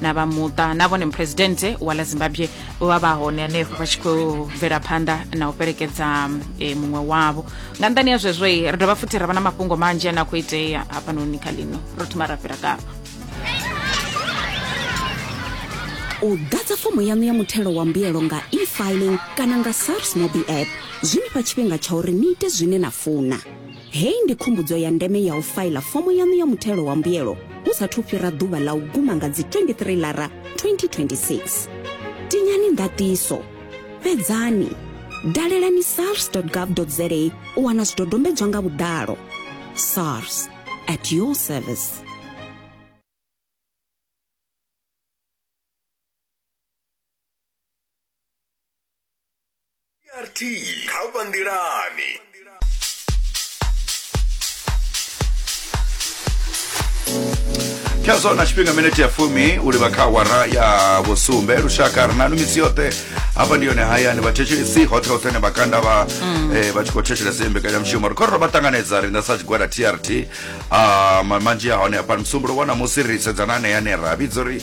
na vha muṱa na vhone muphuresidennde wa ḽa zimbabwe vha vha hone hanefho vha tshi khou bvela phanḓa na u fhelekedza e, muṅwe wavho nga nṱani ya zwezwo ri dovha futhi ra vha na mafhungo manzhi ane a khou itea hafhanoni kha lino ro thoma ra fhira kavha u ḓadza fomo yaṋu ya muthelo wa mbuyelo nga e-filing kana nga sars mobi app zwi ni fha tshifhinga tsha uri ni ite zwine na funa Hei ndi khumbudzo ya ndeme ya u faila fomo yaṋu ya muthelo wa mbuyelo hu sa thu fhira ḓuvha ḽa u guma nga dzi 23 lara 2026. Tinyani ndaṱiso, fhedzani, dalelani sars.gov.za u wana zwidodombedzwa nga vhuḓalo. SARS, at your service. rt kha vha nḓilani khezwo na tshifhinga minete ya fumi u livha kha awara ya vhusumbe lushaka ri nanu misi yoṱhe hafha ndi yone hayani vhathetshelesi hoṱhe hoṱhe ne vhakanda vha eh, vha tshi khou thetshelesa iyi mbekanyamushumo ri khou ri ro vha ṱanganedza riṋe sa tshigwada trt ah, ma- manzhi a hone hafha musumbulo wa ṋamusi ri sedzana aneya ane ra vhidza uri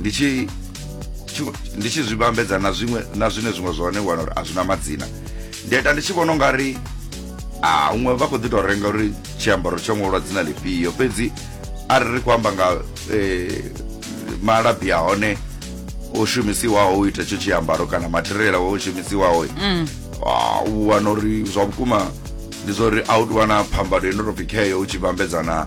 ndi tshi tshi- ndi tshi zwi vhambedza na zwiṅwe na zwine zwiṅwe zwa hone wana uri a zwina madzina ndi a ita ndi tshi vhona unga ri a huṅwe vha khou ḓi tou renga uri tshiambaro tsho ṅwalwa dzina lifhio fhedzi a ri ri khou amba nga eh, malabi a hone o shumisiwaho u ita itsho tshiambaro kana material awo o shumisiwaho Ah, u wana uri zwa vhukuma ndi zwa uri a u tou vha na phambano ino tou pfi kheyo u tshi vhambedzana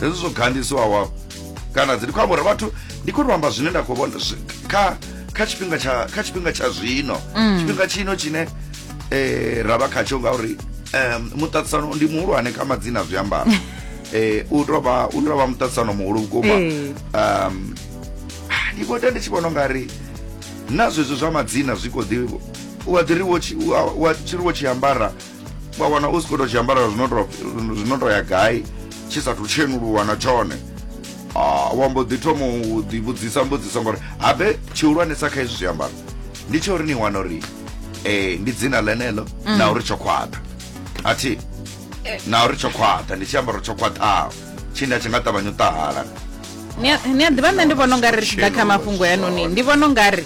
hezwi zwo gandisiwaho kana dzi ndi khou amba uri vhathu ndi khou amba zwine nda khou vhona kha kha tshifhinga tsha kha tshifhinga tsha zwino mm. tshifhinga tshino tshine eh ra vha khatsho ngauri um muṱaṱisano ndi muhulwane kha madzina zwiambaro eh u tou vha u tou vha muṱaṱisano muhulu vhukuma eh. um ndi vho ita ndi tshi vhona ungari na zwezwo zwa madzina zwi kho ḓi u a ḓi ri wo tshi wo tshi ambara wa wana u si khou tou zwiambara zwi no tou ya gai tshi sathu tshhenuluwa na tshone ah, wa mbo ḓi thoma u ḓivhudzisa mbudziso ngori habe tshihulwanesa kha izwi zwiambaro ndi tsha uri ni wana uri um ndi dzina ḽeneḽo mm. na uri tsho khwaṱha a thi eh. na uri tsho khwaṱha ndi tshiambaro tsho khwaṱhaho tshine a tshi nga ṱavhanya u ṱahala ni a ḓivha nṋe ndi vhona u nga ri ri tshi ḓa kha mafhungo yanoni ndi vhona u nga ri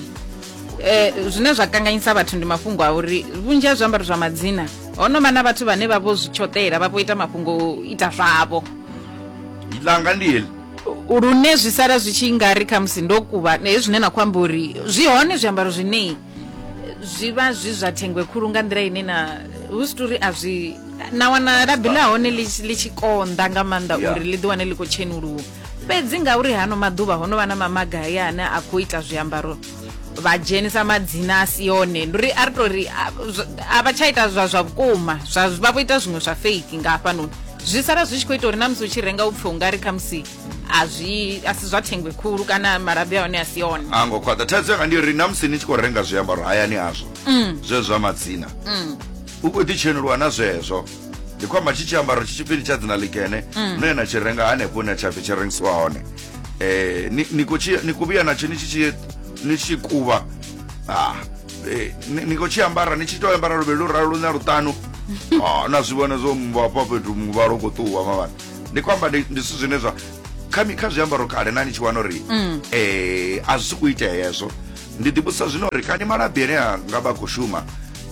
Eh, zwine zwa kanganyisa vhathu ndi mafhungo a uri vhunzhi ha zwiambaro zwa madzina ho no vha na vhathu vhane vha vho zwi tshoṱela vha vho ita mafhungo o ita zwavho langa ndi heḽi lune zwi sala zwi tshi nga ri khamusi ndo kuvha eh, zwine na khou amba uri zwi hone zwiambaro zwine eh, zwi vha zwi zwa thengwe khulu nga nḓila ine na hu si tori a zwi na wana labi la hone li tshi- li tshi konḓa nga maanḓa Yeah. uri ḽi ḓi wane ḽi khou tshenuluka fhedzi ngauri hano maḓuvha ho no vha na mamaga haya ane a khou ita zwiambaro vha dzhenisa madzina a si yone ndi uri a ri tou ri a vha tsha ita zwa zwa vhukuma zwa vha vho ita zwiṅwe zwa fake nga hafhanoni zwi sala zwi tshi khou ita uri na musi u tshi renga u pfhe u nga ri khamusi a zwi a si zwa thengwe khulu kana malabi a hone a si yone a ngo khwaṱha thaidzo yanga ndi uri na musi ni tshi khou renga zwiambaro hayani hazwo mm. zwe zwa madzina mm. u khou ḓitshenuluwa na zwezwo ndi khou amba tshi tshiambaro tshi tshipfini tsha dzina ḽikene mm. no ya na tshi renga hanefho hune tsha pfi tshi rengisiwa hone eh, ni, ni, ku, ni ku vhuya natsho ni tshi ni tshi kuvha ah, eh, ni, ni khou tshi ambara ni tshi tou ambara luvhili lu ralo lune luṱanu ah, na zwi vhona zwo mvhafha fhethu muvhala u khou ṱuwa mavhana ndi khou amba ndi zwithu zwine zwa kha zwiambaro kale na ni tshi wana uri um a zwi si ku itea hezwo Ndi ḓivhudzisa zwino uri kani malabi ane a nga vha khou shuma.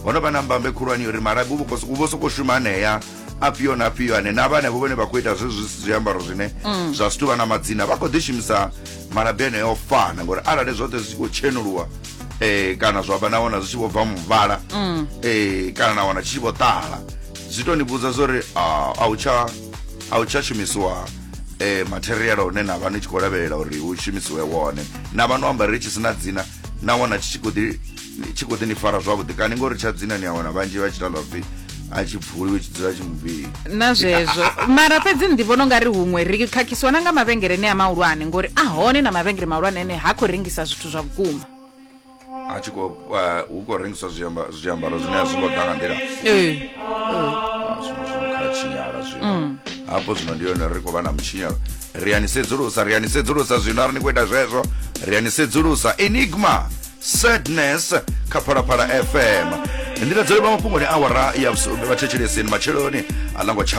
Ho no vha na mbambe khulwane uri malabi hu vho sokou shuma anea afhio na afhio ane na vha henefho vhane vha khou ita zwezwi zwi si zwiambaro zwine mm. zwa si tuvha na madzina vha khou ḓi shumisa malabi eneo o fana ngori arali zwoṱhe zwi tshi khou tshenuluwa um kana zwa vha na wana zwi tshi vho bva muvhala um kana na wana tshi tshi vho ṱala zwi to ni vhudza zwa uri a u tsha a u tsha shumisiwa eh, material one na vha ni tshi khou lavhelela uri hu shumisiwe wone na vha no amba ri tshi sina dzina na wana tshi khou ḓi tshi khou ḓi ni fara zwavhuḓi kani ngori tsha dzina ni a wana vhanzhi vha tshi tala pfhi a tshi pfuliwe tshi dzula tshi muvhili na zwezwo mara fhedzi ndi vhona ungari huṅwe ri khakhisiwa na nga mavhengele ne a mahulwane ngori a hone na mavhengele mahulwane ane ha khou rengisa zwithu zwa vhukuma a tshi khou eh, hu khou rengiswa zwiamba- zwiambaro zwine a zwi ngo ḓa nga nḓila Ee. Ah, zwino zwino kha tshinyala zwino hafho zwino ndi yone ri khou vha na mutshinyalo ri a ni sedzulusa ri a ni sedzulusa zwino ari ni khou ita zwezwo ri a ni sedzulusa enigma sadness kha phalaphala fm ndi ladzole vha mafhungoni awara ya vhusumbe vhathetshelesini matsheloni a ḽa ngo tsha